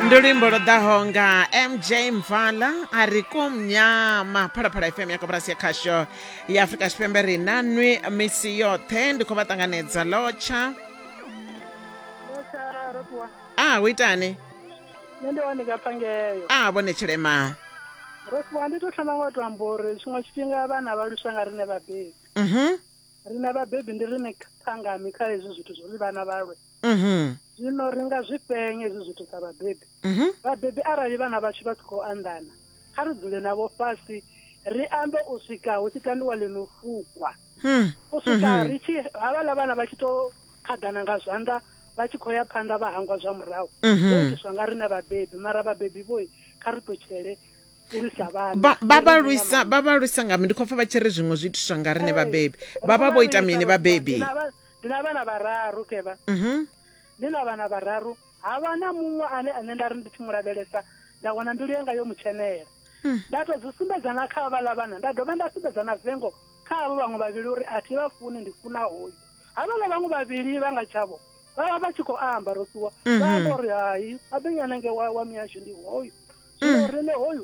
ndi luimbo lwo ḓaho nga mj mvala a ri kumnyama phalaphala fm ya koporasi ya khasho ya afurika tshipembe ri na nwi misi yoṱhe ndi khou vha ṱanganedza lotsha a hu itani nṋe ndi one kaphangeyo a vhone tshilema rofuwa ndi to thoma nga u to amba uri tshiṅwe tshifhinga vhana vha luswa nga rine vhabebi mhm rine vhabebi ndi rine phangami kha hezwi zwithu zwo ri vhana vhalwe mhm. zwino ri nga zwi fhenya hezwi zwithu sa vhabebi mhm. vhabebi arali vhana vhashu vha si khou anḓana kha ri dzule navho fhasi ri ambe u swika hu tshi tambiwa ḽi no fukwa hmm. u swika mhm. ri tshi havhaḽa vhana vha tshi to khaḓana nga zwanḓa vha tshi khou ya phanḓa vha hangwa zwa murahu ho itiswa nga riṋe vhabebi mara vhabebi vhoi kha ri ṱutshele vhabalwisa nga mi ndi khou pfa vha tshi ri zwiṅwe zwi itiswa nga riṋe vhabebi vha vha vho ita mini vhabebi ndi na vhana vhararu kevha mhm ndi na vhana vhararu ha vha na muṅwe ane ane nda ri ndi tshi mu lavhelesa nda wana mbilu yanga yo mu tshenela Hmm. nda tou zwi sumbedza na kha vhaḽa vhana nda dovha nda sumbedza na vengo kha havho vhaṅwe vhavhili uri a thi vha funi ndi funa hoyu havhaḽa vhaṅwe vhavhili vha nga tshavho vha vha vha tshi khou amba ro ṱuwa vha amba uri hai abenyana nge wa wa mihasho ndi hoyu zwino riṋe hoyu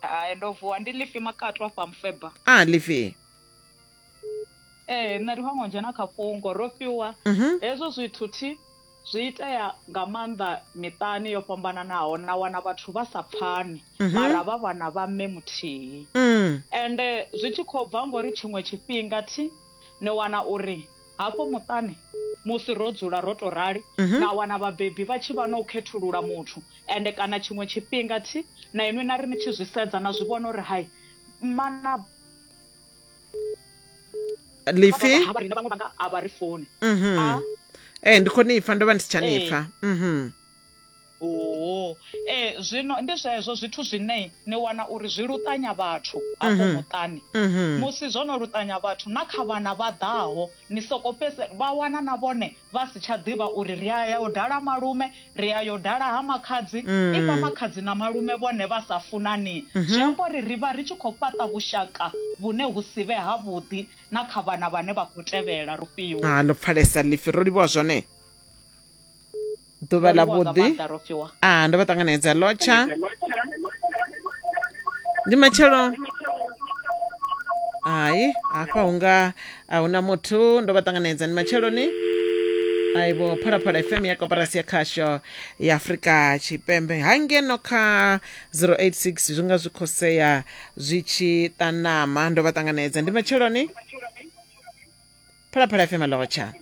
hai ndo vuwa ndi lifi makatu afha mufeba a lifi ee nṋe ndi vhango dzhena kha fhungo ro fhiwa mhm. hezwo zwithu thi zwi itea nga maanḓa miṱani yo fhambananaho na wana vhathu vha sa pfani mhm. mara vha vhana vha mme muthihi mm. ende zwi tshi khou bva ngori tshiṅwe tshifhinga thi ni wana uri Hafho muṱani musi ro dzula ro tou rali, mhm. na wana vhabebi vha tshi vha na u khethulula muthu, ende kana tshiṅwe tshifhinga thi na inwi na ri ni tshi zwi sedza na zwi vhona uri hai mana lifi ha vha rina vhaṅwe vhanga a vha ri foni mhm. ee ndi khou ni pfa ndo vha ndi si tsha ni pfa mhm. Oo ee eh, zwino ndi zwezwo zwithu zwine ni wana uri zwi luṱanya vhathu afho mhm. muṱani mhm. musi zwo no luṱanya vhathu na kha vhana vha ḓaho ni soko fhese vha wana na vhone vha si tsha ḓivha uri ri a ya u dala malume ri a yo dala ha makhadzi mm. i fha makhadzi na malume vhone vha sa funani mhm. zwi amba uri ri vha ri tshi khou fhaṱa vhushaka vhune hu si vhe havhuḓi na kha vhana vhane vha khou tevhela rufhiwo ha ah, ndo pfalesa lifi ro livhuwa zwone ḓuvha ḽa vhuḓi a ah, ndo vha ṱanganedza lotsha ndi matshelo hai hafha hunga a huna muthu ndo vha ṱanganedza ndi matsheloni aibo phalaphala fm ya koporasi ya khasho ya afurika tshipembe ha ngeno kha 086 zwi nga zwi khosea zwi tshi ṱanama ndo vha ṱanganedza ndi matsheloni phalaphala fm lotšha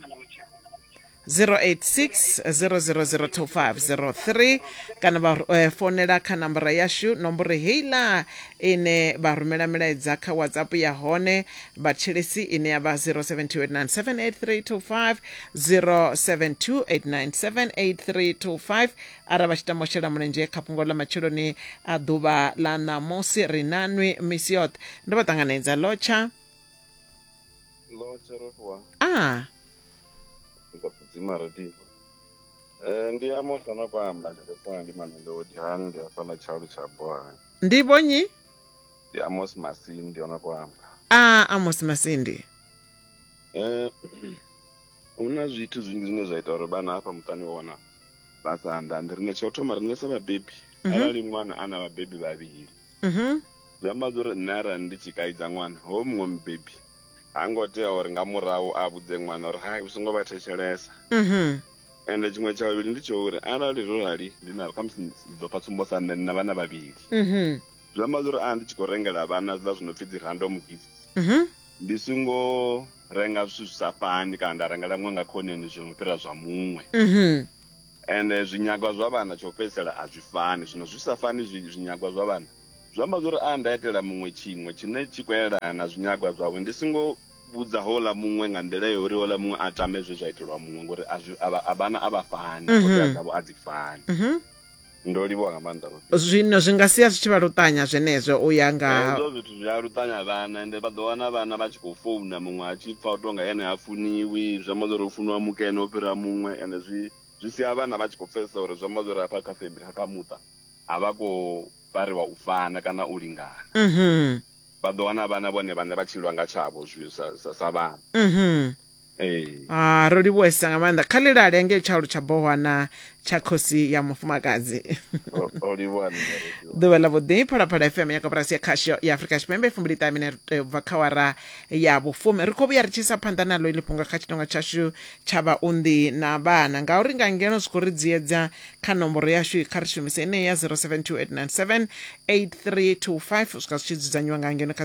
0860002503 kana vha eh, fonela kha namboro yashu nomboro heiḽa ine vha rumela milaedza kha whatsapp ya hone vhatshelesi ine ya vha 0728978325 0728978325 arali vha tshi tama u shela mulenzhe kha fhungo ḽa matsheloni a ḓuvha ḽa ṋamusi ri nanwi misi yoṱhe ndo vha ṱanganedza lotsha Lord Jeroboam. Ah. Ndikudzima radio. Eh ndi amo sana kwamba ndikufuna ndi mamelodi hani ndi afana chalu cha boha. Ndi bonyi? Ndi Amos Masindi ona kwamba. Ah Amos Masindi. Eh una zwithu zwingi zwine zwa ita uri bana hafha muṱani wona vha sa andandi rine tsho thoma rine sa vhabebi mm -hmm. arali ṅwana ana vhabebi vhavhili Mhm. Zwi amba zwa uri nṋe arali ndi tshi kaidza ṅwana hoyu muṅwe mubebi ha ngo tea uri nga murahu a vhudze ṅwana uri hai u songo vha thetshelesa Mhm. ende tshiṅwe tsha vhavhili ndi tsho uri arali zwo rali ndi na khamusi ndi ḓo pfa tsumbo sa nṋe ndi na vhana vhavhili Mhm. zwi amba zwa uri a ndi tshi khou rengela vhana zwiḽa zwi no pfhi dzi random gift Mhm. ndi songo renga zwithu zwi sa fani kana nda rengela muṅwe nga khoneni zwi no fhira zwa muṅwe Mhm. Ende zwinyagwa zwa vhana tsha u fhedzisela a zwi fani. Zwino zwi sa fani zwi, zwinyagwa zwa vhana, zwi amba zwa uri a nda itela muṅwe tshiṅwe tshine tshi khou elana na zwinyagwa zwawe, ndi songo vhudza houḽa muṅwe nga nḓila ya uri houḽa muṅwe a tame zwe zwa itelwa muṅwe, ngori a zwi, a vha, a vhana a vha fani, ṱhoḓea dzavho a dzi fani. Ndo livhuwa nga maanḓa. zwino zwi nga sia zwi tshi vha luṱanya zwenezwo u ya nga hezwo zwithu zwi a luṱanya vhana ende vha ḓo wana vhana vha tshi khou founa muṅwe a tshi pfa u tonga ene ha funiwi zwi amba zwori u funiwa mukene o fhira muṅwe ende zwi zwi sia vhana vha tshi khou pfesesa uri zwi amba zwori hafha kha family kha muṱa a vha khou fariwa u fana kana u lingana mhm. vha ḓo wana vhana vhone vhane vha tshilwa nga tshavho zwi sa, sa, sa vhana mhm. Ee. Ah, ro livhuwesa nga maanḓa kha ḽilale ngei tshaulu tsha bohwana tsha khosi ya mufumakadzi O- o livhuwa nṋe, o livhuwa. ḓuvha ḽa vhuḓi phalaphala fm ya koporasi ya khasho ya afurika tshipembe fumbili ṱahe minete ubva kha wara ya vhufumi ri khou vhuya ri tshi isa phanḓa naḽo iḽi fhungo kha tshitonga tshashu tsha vhaunḓi na vhana ngauri nga ngeno zwi khou ri dziedza kha nomboro yashu kha ri shumise ineyi ya 0728978325 u swika zwi tshi dzudzanyiwa nga ngeno kha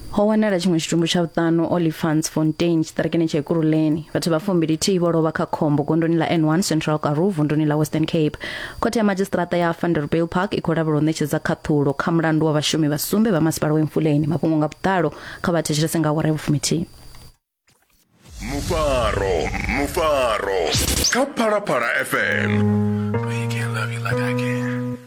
ho wanala tshiṅwe tshitumbu tsha vhuṱanu olifants fontain tshiṱarekeni tsha ekuruleni vhathu vha fumbilithihi vho lovha kha khombo gondoni ḽa n1 central karu vunduni ḽa western cape khothe ya madzhisiṱiraṱa ya vanderbill park i khou lavhela u ṋetshedza khaṱhulo kha mulandu wa vhashumi vha sumbe vha masipala wa emfuleni mafhungo nga vhuḓalo kha vha thetshelese nga awara ya vhufumithihi mufaro mufaro kha phalaphala fm